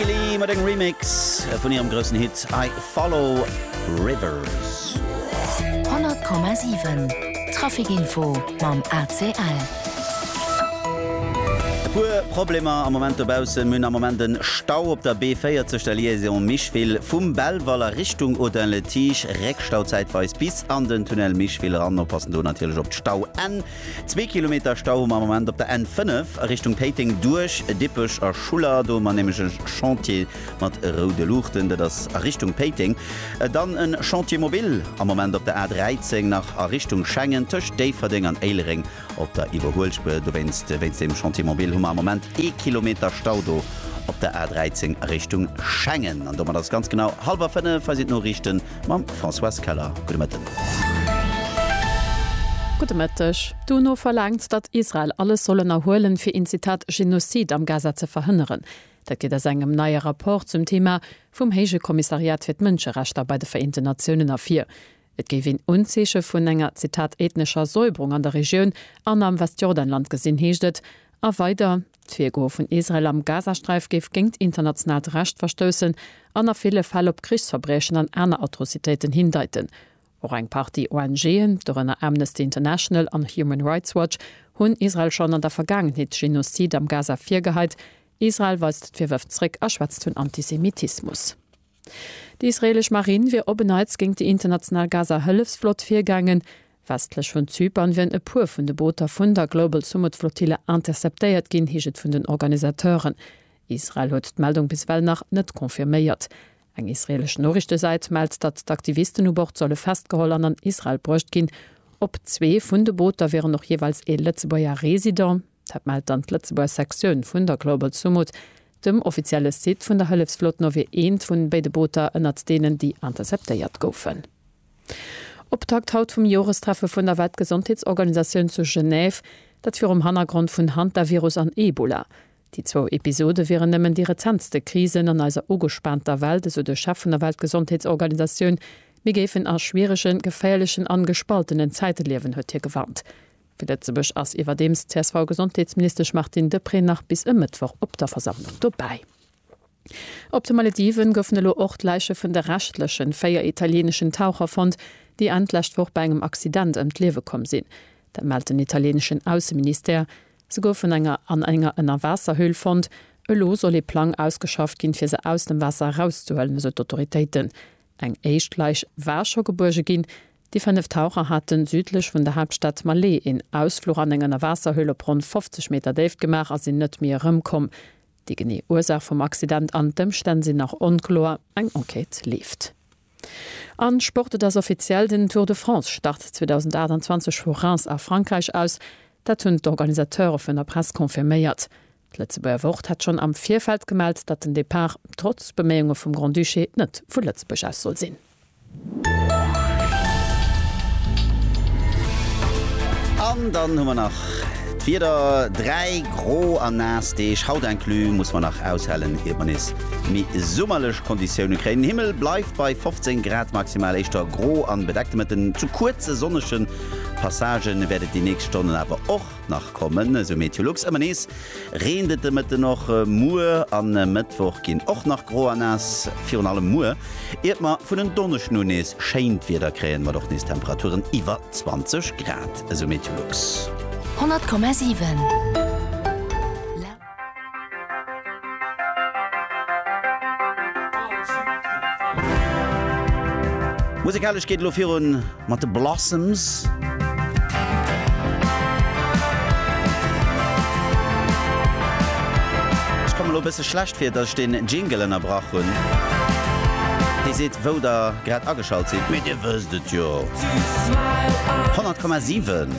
Hayley mat engem Remix vun hirem groussen Hit I Follow Rivers. 100,7 Traficinfo mam ACL. E puer Problemer am Moment dobaussen. Mir hunn am Moment en Stau op der B40, der Liaison Micheville vum Belval a Richtung Audun-le-Tiche. Réckstau zäitweis bis an den Tunnel Micheville eran. Oppassen do natierlech op d'Stauenn. Zwee Kilometer Stau hu mer am Moment op der N5 a Richtung Péiteng duerch Dippech a Schuller. Do hu mer nämlech e Chantier mat roude Luuchten. Dat ass a Richtung Péiteng. Dann e Chantier mobile am Moment op der A13 nach a Richtung Schengen tëscht Déifferdeng an Éilereng op der Iwwerhuelspuer. Dowéinst, wéinst deem Chantier mobile, hu mer am Moment ee Kilometer Stau do op der A13 a Richtung Schengen. An domat ass et ganz genau hallwer fënnef. Hei sinn d'Noriichten Mam Françoise Keller, gudde Mëtten. Gudde Mëtteg. D'UNO verlaangt, datt Israel alles soll ënnerhuelen, fir een Zitat Genozid am Gaza ze verhënneren. Dat geet aus engem neie Rapport zum Thema vum Héije Kommissariat fir d'Mënscherechter bei de Vereenten Natiounen ervir. Et géif een Unzeeche vun enger Zitat ethnescher Säuberung an der Regioun an am Westjordanland gesinn, heescht et a weider. D'Virgoe vun Israel am Gazasträif géif géint internationaalt Recht verstoussen an a ville Fäll op Krichsverbriechen an aner Atrocitéiten hindeiten. Och eng Partie ONGen, dorënner Amnesty International an Human Rights Watch, hunn Israel schonn an der Vergaangenheet Genozide am Gaza virgeheit. Israel weist d'Virwërf zréck a schwätzt vun Antisemitismus. Déi israeelesch Marinn wier op en Neits géint déi international Gaza-Hëllefsflott virgaangen. Westlech vun Zypern wieren e puer vun de Booter vun der Global Sumud Flottille interceptéiert ginn, heescht et vun den Organisateuren. Israel huet d'Meldung bis ewell nach net confirméiert. Eng israeelesch Noriichtesäit mellt, datt d'Aktivisten u Bord solle festgeholl an an Israel bruecht ginn. Op zwee vun de Booter wieren och jeeweils ee Lëtzebuerger Resident. Dat mellt dann d'Lëtzebuerger Sektioun vun der Global Sumud. Dem offizielle Site vun der Hëllefsflot no wier eent vun béide Booter ënnert deenen, déi interceptéiert goufen. Optakt haut vum Jorestreffe vun der Weltgesondheetsorganisatioun zu Genève, dat virum Hannergrond vun Hantavirus an Ebola. Déi zwou Episode wieren nëmmen déi rezentste Krisen an eiser ugespaanter Welt, esou de Chef vun der Weltgesondheetsorganisatioun. Mir géifen a schwieregen, geféierlechen an gespaltenen Zäite liewen, huet hie gewarnt. Fir Lëtzebuerg ass iwwerdeems d'CSV-Gesondheetsministesch Martine Deprez nach bis e Mëttwoch op der Versammlung dobäi. Op de Malediven goufen elo och d'Läiche vun de reschtlechen véier italieeneschen Taucher fonnt, déi Enn d'lescht Woch bei engem Accident ëm d'Liewe komm sinn. Dat mellt den italieeneschen Ausseministère. Se goufen enger an enger Ënnerwaasserhöhl fonnt. Elo soll ee Plang ausgeschafft ginn, fir se aus dem Waasser erauszehuelen, esou d'Autoritéiten. Eng éischt Läich war scho gebuerge ginn. Déi fënnef Taucher haten südlech vun der Haaptstad Malé een Ausfluch an eng Ënnerwaasserhöhle op ronn 50 Meter Déift gemaach a sinn net méi erëmkomm. Déi genee Ursaach vum Accident an d'Ëmstänn sinn nach onkloer. Eng Enquête leeft. A Sport, Et ass offiziell, den Tour de France start 2028 vu Reims a Frankräich aus. Dat hunn d'Organisateure vun der Press confirméiert. D'Lëtzebuerger Wort hat schonn am Virfeld gemellt, datt den Depart, trotz Beméiunge vum Grand-Duché, net vu Lëtzebuerg aus soll sinn. An dann hu mer nach d'Wieder, dräi gro a naass Deeg, haut inclus, muss mer nach aushalen, ier mer nees méi summerlech Konditioune kréien. Den Himmel bleift bei 15 Grad maximal, éischter gro an bedeckt. Mat den zu kuerze sonnege Passagen wäert et déi nächst Stonnen awer och nach kommen, esou Meteolux. Ëmmer nees reent et de Mëtten och. Muer a Mëttwoch ginn och nach gro a naass, virun allem muer, iert mer vun en Donneschden un nees schéint Wieder kréien, mat och nees Temperaturen iwwer 20 Grad, esou Meteolux. 100,7. Musikalesch geet et elo virun mat de Blossoms. Ech komme elo e bësse schlecht vir, datt ech den Jingle ënnerbrach hunn. Dee seet, wou der grad ageschalt sidd, mee dir wësst et jo. 100,7.